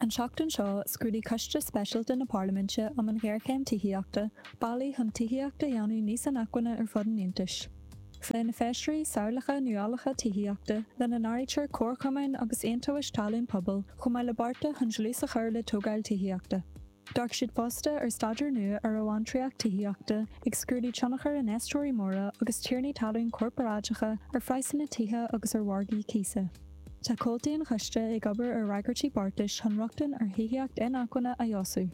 An tseachtain seo, scrúdaigh Coiste Speisialta na Parlaiminte um an Ghéarchéim Tithíochta bealaí chun tithíocht a dhéanamh níos inacmhainne ar fud an Aontais. Phléigh na Feisirí samhlacha nuálacha tithíochta, lena n-áirítear comharchumainn agus aontumhais talún pobail, chomh maith le bearta chun dlús a chur le tógáil tithíochta. D'fhéach siad fosta ar staidéar nua ar amhantraíocht tithíochta, ag scrúdú tionchar infheisteoirí móra agus tiarnaí talún corparáideacha ar phraghsanna tithe agus ar mhargaí cíosa. Tá comhaltaí an Choiste ag obair ar fhreagairtí beartais chun rochtain ar thithíocht inacmhainne a fheabhsú.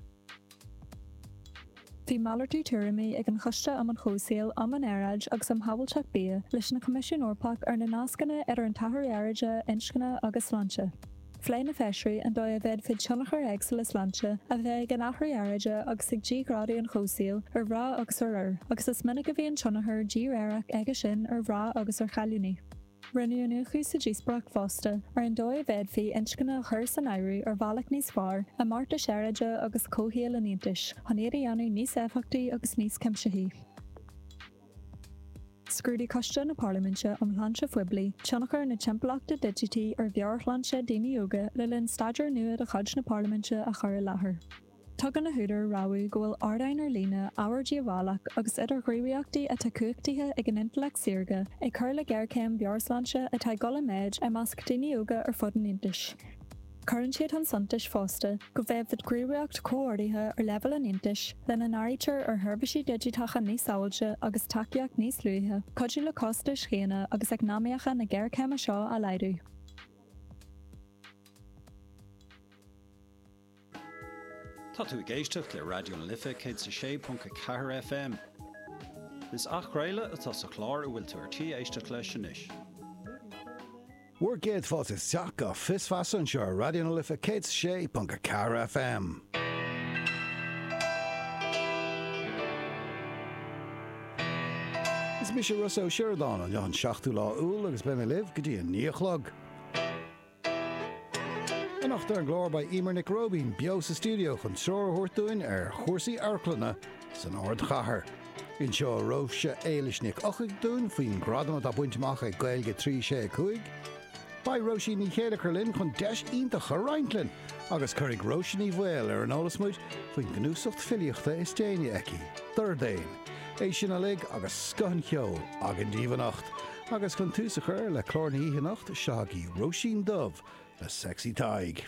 Bhí malartú tuairimí ag an Choiste um an Chomhshaol, um an Aeráid agus um Shábháilteacht Bia leis an gCoimisiún Eorpach ar na nascanna idir an t-athrú aeráide, inscne agus sláinte. Phléigh na Feisirí an dóigh a bhféadfadh tionchair éagsúla sláinte a bheith ag an athrú aeráide agus ag díghrádú an chomhshaoil ar mhná agus ar fhir, agus is minic a bhíonn tionchar díréireach aige sin ar mhná agus ar chailíní. Rinneadh iniúchadh sa díospóireacht fosta ar an dóigh a bhféadfaí inscne a chur san áireamh ar bhealach níos fearr i mbeartais aeráide agus comhshaoil an Aontais, chun iad a dhéanamh níos éifeachtaí agus níos cuimsithí. Scrúdaigh Coiste na Parlaiminte um Shláinte Phoiblí tionchar na timpeallachta digití ar mheabhairshláinte daoine óga le linn staidéar nua de chuid na Parlaiminte a chur i láthair. Tugann na húdair rabhadh go bhfuil ardáin ar líne ábhar díobhálach agus idirghníomhaíochtaí atá cumhachtaithe ag an intleacht saorga ag cur le géarchéim mheabhairshláinte atá ag dul i méid i measc daoine óga ar fud an Aontais. Cuireann siad chun suntais fosta go bhféadfadh gníomhaíocht chomhordaithe ar leibhéal an Aontais, lena n-áirítear ar sheirbhísí digiteacha níos sábháilte agus tacaíocht níos luaithe, cuidiú le costais dhaonna agus eacnamaíocha na géarchéime seo a laghdú. Tá tú ag éisteacht le Raidió na Life 106.4 FM. Is athchraoladh atá sa chlár a bhfuil tú ar tí éisteacht leis anois. Bhur gcéad fáilte isteach go Fios Feasa anseo ar Raidió na Life 106.4 FM. Is mise Ros Ó Sioradáin, an Luan 7ú lá Iúil agus beidh mé libh go dtí a 9 a chlog. Anocht ar an gclár beidh Emer Nic Róibín beo sa stiúideo chun treoir a thabhairt dúinn ar chúrsaí amharclainne San ardchathair, inseoidh Róise Éilis Ní Eochaidh dúinn faoin ngradam atá bainte amach ag Gaeilge 365. Beidh Róisín Ní Chéilleachair linn chun deis iontach a roinnt linn agus cuirfidh Róise Ní Bhaoill ar an eolas muid faoin gcnuasach filíochta is déanaí aici, Dordéan. É sin uilig agus scoth an cheoil againn daoibh anocht. Agus chun tús a chur le clár na hoíche anocht, seo agaibh Róisín Dubh le Sexy Tadhg.